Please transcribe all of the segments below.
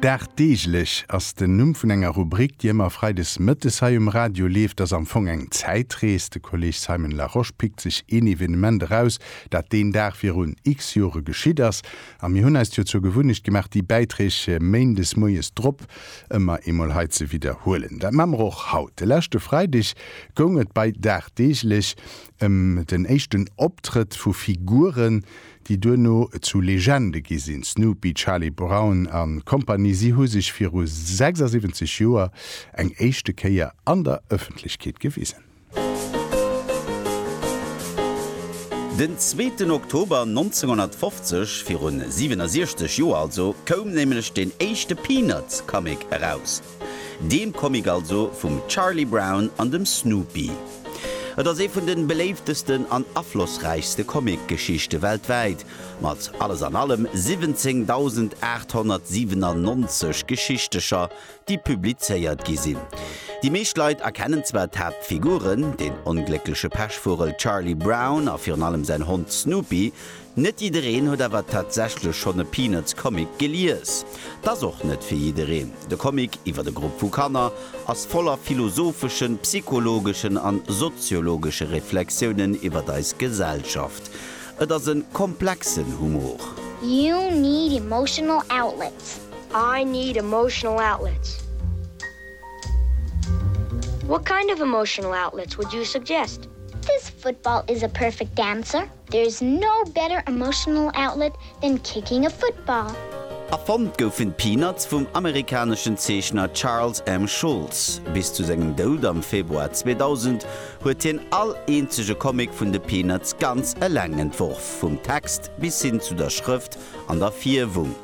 Dagdeeglech ass den Numm vun enger Rubrik, déi ëmmer freides mëttes hei um Radio leeft. Ass am Fong eng Zäitrees. De Kolleg Simon Larosche pickt sech een Evenement eraus, dat deen Dag virun x-Jore geschitt ass. A mir hunn eis jo zur Gewunnecht gemaach, déi Bäiträg méindes moies drop ëmmer eemol hei ze widderhuelen. Dat maache mer och haut. De leschte Freideg goung et bei Dagdeeglech ëm den éischten Optrëtt vu Figuren, déi duerno zu Legende gi sinn, Snoopy, Charlie Brown a Kompanie. Si hu sech viru 76 Joer eng éischte Kéier an der Ëffentlechkeet gewisen. Den zweeten Oktober 1950, virun 67 Joer also, koum nämlech den éischte Peanuts-Comic eraus. Deem Comic also vum Charlie Brown an dem Snoopy. Et ass ee vun de beléiftesten an aflossräichste Comic-Geschichte weltwäit, mat alles an allem 17.897 Geschichtecher, déi publizéiert gi sinn. Déi meescht Leit erkennen zwar d'Haaptfiguren, den ongléckleche Pechvugel Charlie Brown a virun allem säin Hond Snoopy, Net jiddereen huet awer tatsächlech schonn e Peanuts-Comic gelies. Et ass och net fir jiddereen. De Comic iwwer e Grupp vu Kanner ass voller philosopheschen, psychologeschen an soziologesche Reflexiounen iwwer eis Gesellschaft. Et ass e komplexen Humor. You need emotional outlets. I need emotional outlets. What kind of emotional outlets would you suggest? This football is a perfect dancer. There is no better emotional outlet than kicking a football. Erfonnt goufen d'Peanuts vum amerikaneschen Zeechner Charles M. Schulz. Bis zu sengem Doud am Februar 2000 huet hien all eenzege Comic vun de Peanuts ganz eleng entworf, vum Text bis hin zu der Schrëft an der Fierwung.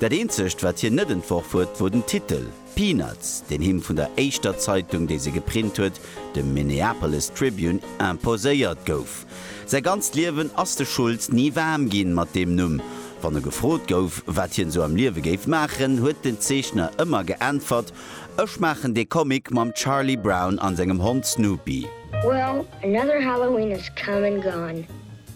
Dat eenzegt, wat hien net entworf huet, wor den Titel. Peanuts, deen him vun der éischter Zeitung, déi se geprint huet, dem Minneapolis Tribune, imposéiert gouf. Säi ganzt Liewen ass de Schulz ni waarm ginn mat deem Numm. Wann e gefrot gouf, wat hien esou am Liewe géif maachen, huet den Zeechner ëmmer geäntwert, Ech maachen dee Comic mam Charlie Brown an sengem Hond Snoopy. Well, another Halloween has come and gone.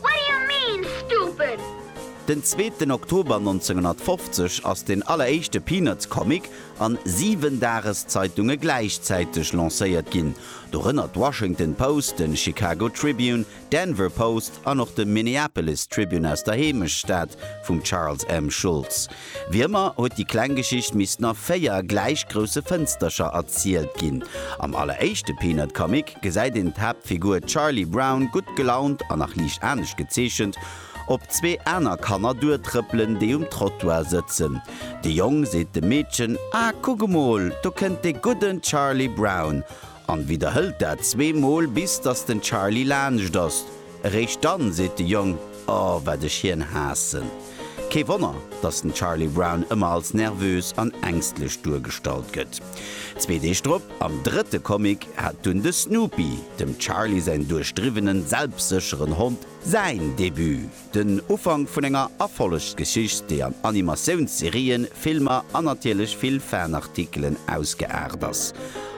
What do you mean, stupid? Den zweeten Oktober 1950 ass den alleréischte Peanuts-Comic an siwen Dageszeitunge gläichzäiteg lancéiert ginn, dorënner d'Washington Post, den Chicago Tribune, Denver Post an och de Minneapolis Tribune aus der Heemechtsstad vum Charles M. Schulz. Wéi ëmmer huet déi kleng Geschicht missten a véier gläich grousse Fënstercher erzielt ginn. Am alleréischte Peanut-Comic gesäit een d'Haaptfigur Charlie Brown gutt gelaunt a nach liicht anescht gezeechent op zwee aner Kanner duertrëppelen, déi um Trottoir sëtzen. De Jong seet dem Meedchen, Ah, kuck emol, do kënnt de gudden Charlie Brown! an widderhëlt dat zweemol, bis datt den Charlie laanscht ass. Eréischt dann seet de Jong, Oh, wat ech hien haassen! Kee Wonner, datt den Charlie Brown ëmmer als nervös an ängstlech duergestallt gëtt. Zwee Deeg drop, am drëtte Comic, hat dunn de Snoopy, dem Charlie säin duerchdriwwenen, selbstsécheren Hond, säin Debut, den Ufank vun enger Erfollegsgeschicht, déi an Animatiounsserien, Filmer an natierlech vill Fanartikelen ausgeaart ass.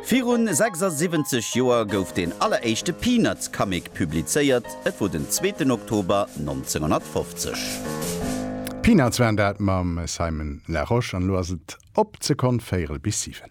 Virun 76 Joer gouf deen alleréischte Peanuts-Comic Publizéiert, et wor den zweeten Oktober 1950. Peanuts waren dat mam Simon Laroche an elo ass et op ze konnt véirel bis siwen.